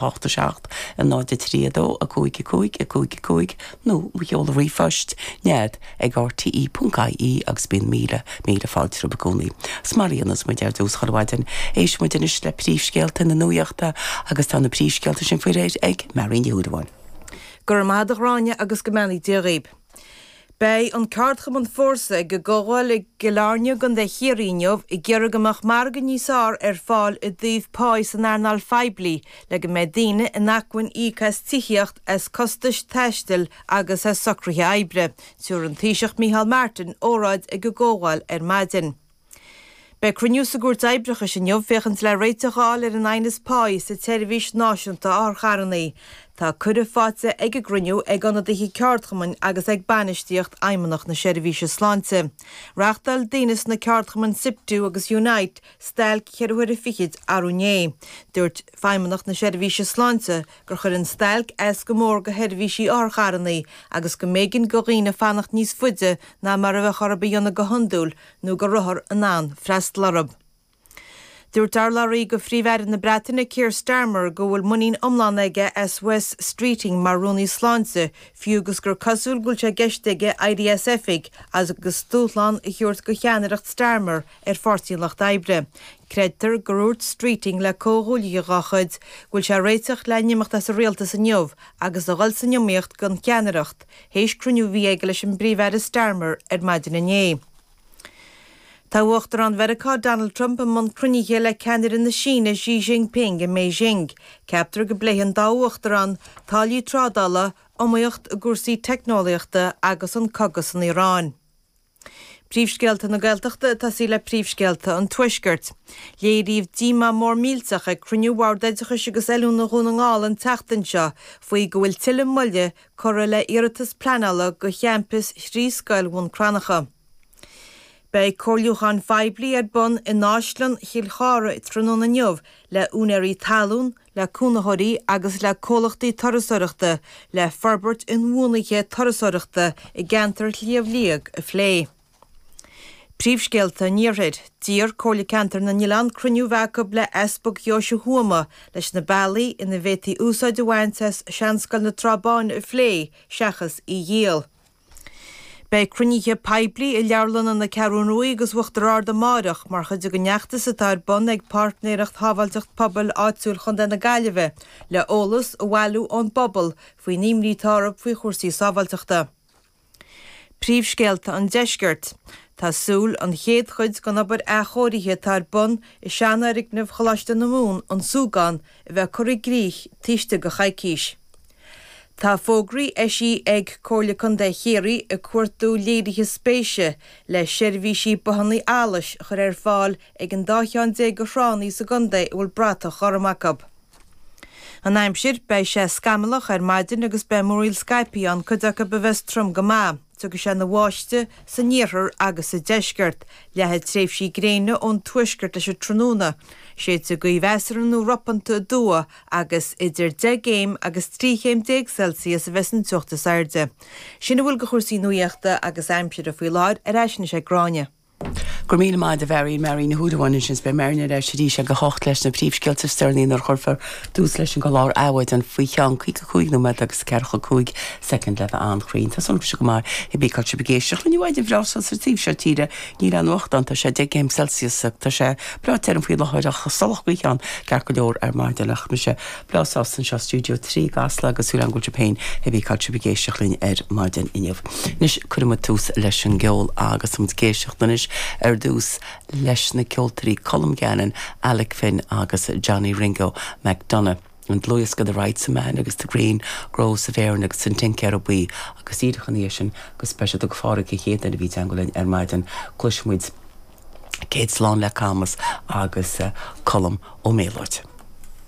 0 8 7 0 3 2 5 5 5 5 nó mo sheoladh ríomhphoist, nead ag rte ponc ie agus bíonn míle míle fáilte romhaibh i gcónaí. Is mar a dhéanas muid ar dtús chuile mhaidin, éisteann muid anois le príomhscéalta na nuaíochta agus tá na príomhscéalta sin faoi réir ag Mary Ní Shúilleabháin. Go raibh maith agat Gráinne agus go mbeannaí Dia dhaoibh. Beidh an ceardchumann Fórsa ag an gcomhdháil i gCill Airne i gContae Chiarraí inniu ag iarraidh go mbeadh margadh níos fearr ar fáil i dtaobh páighe san earnáil phoiblí le go mbeadh daoine in acmhainn íoc as tithíocht, as costais taistil agus as socruithe oibre. Tiúr an Taoiseach Micheál Martin óráid ag an gcomhdháil ar maidin. Beidh cruinniú sa gCúirt Oibreachais inniu féachaint le réiteach a fháil ar an aighneas páighe sa tSeirbhís Náisiúnta Otharcharrannaí. Tá cuireadh faighte ag an gcruinniú ag ionadaithe ceardchumainn agus ag bainistíocht Fheidhmeannacht na Seirbhíse Sláinte. Reachtáil daoine sna ceardchumainn Siptu agus Unite stailc ceithre huaire fichid arú inné. Dúirt Feidhmeannacht na Seirbhíse Sláinte gur chuir an stailc as go mór go sheirbhísí otharcharrannaí agus go mb'éigean go dhaoine fanacht níos faide ná mar a bheadh orthu a dhéanamh go hiondúil nó go rabhthar in ann freastal orthu. Dúirt urlabhraí go Phríomh-Aire na Breataine, Keir Starmer, go bhfuil muinín iomlán aige as Wes Streeting mar Rúnaí Sláinte, fiú agus gur cosúil go bhfuil sé i gceist aige éirí as oifig agus dúshlán a thabhairt go cheannaireacht Starmer ar Pháirtí an Lucht Oibre. Creidtear gur úirt Streeting le comhghuaillithe dá chuid go bhfuil sé ag réiteach le n-imeacht as an rialtas inniu agus a dhul san iomaíocht gon cheannaireacht Théis cruinniú a bhí aige leis an bPríomh-Aire Starmer ar maidin inné. Tá Uachtarán Mheiriceá Donald Trump i mbun cruinnithe le ceannaire na Síne Xi Jinping i mBeijing. Ceaptar go bpléifidh an dá uachtarán táillí trádála, iomaíocht i gcúrsaí teicneolaíochta agus an cogadh san Iaráin. Príomhscéalta na Gaeltachta ag tosaí le príomhscéalta an Tuaiscirt. Léiríodh díomá mór millteach ag cruinniú Bhord Oideachais agus Oiliúna Dhún na nGall an tseachtain seo faoi go bhfuil tuilleadh moille curtha le hiarratas pleanála do champus thrí scoil Bhun Cranncha. Beidh comhairliúchán poiblí ar bun in Áislann Chill Chárthaigh tráthnóna inniu le úinéirí talún, le cónaitheoirí agus le comhlachtaí turasóireachta le forbairt inbhuanaithe turasóireachta i gceantar Shliabh Liag a phlé. Príomhscéalta an Iarthair, D'iarr Comhairle Ceantair na nOileán cruinniú a bheith acu le Easpag Dheoise Thuama leis na bealaí ina bhféadtaí úsáid a bhaint as Seanscoil na Trá Báine a phlé seachas í a dhíol. Beidh cruinnithe poiblí i Leabharlanna na Ceathrún Rua agus Uachtar Ard amárach mar chuid den fheachtas atá ar bun ag Páirtnéireacht Shábháilteacht Pobail Áitiúil Chontae na Gaillimhe le eolas a bhailiú ón bpobal faoin imní atá orthu faoi chúrsaí sábháilteachta. Príomhscéalta an Deiscirt. Tá súil an chéad chuid gon obair athchóirithe atá ar bun i seanfhoirgneamh Choláiste na Mumhan, An Súgán, a bheith curtha i gcrích tuiscte go ceann coicíse. Tá fógraí eisithe ag Comhairle Contae Chiarraí ag cuartú léirithe spéise le seirbhísí bothanna allais a chur ar fáil ag an dá cheann déag de thránna sa gcontae a bhfuil bratach ghorm acu. An aimsir, Beidh sé scamallach ar maidin agus beidh múraíl scaipthe ann, cuid acu a bheas trom go maith. Tiocfaidh sé ina bháisteadh san iarthar agus sa deisceart. Leathfaidh tréimhsí gréine ón tuaisceart leis an tráthnóna. Séidfidh gaoth mheasartha nó ropanta aduaidh agus idir 10 gcéim agus 13 chéim Celsius a bheas an teocht is airde. Sin a bhfuil de chúrsaí nuaíochta agus aimsire faoi láthair, ar ais anois ag Gráinne. Go raibh míle maith agat a Mháirín Máirín Ní Ghadhra ansin is beidh Máirín ar ais arís ag a hocht leis na príomhscéalta sin nuair a chuirfear tús leis an gclár Adhmhaidin faoi cheann caoga cúig nóiméad agus ceathracha cúig soicind le bheith an-chruinn. Tá súil agam go maith cibé cén áit a bhfuil sibh ag éisteacht linn ar an maidin bhreá seo sa taobh seo tíre níl aon fhuacht ann tá sé deich gcéim Celsius tá sé breá tirim faoi láthair ach sách salach ag breathnú ceart go leor ar maidin ach mise lánsásta anseo i Stiúideo 3 i gCasla agus súil agam go bhfuil sibh féin cibé cén áit a bhfuil sibh ag éisteacht linn ar maidin inniu. Anois cuirfidh muid tús leis an gceol agus tá muid ag éisteacht anois ar dtús leis na ceoltóirí Colm Gannon, Alec Finn agus Johnny Ringo McDonagh. Ón dlúthdhiosca The Rights of Man agus The Green Groves of Erin agus An Tincéara Buí agus díreach ina dhiaidh sin go speisialta do Phádraig an chéad duine a bhí i dteangmháil linn ar maidin cloisfidh muid Céad Slán le Camas agus Colm Ó Méalóid.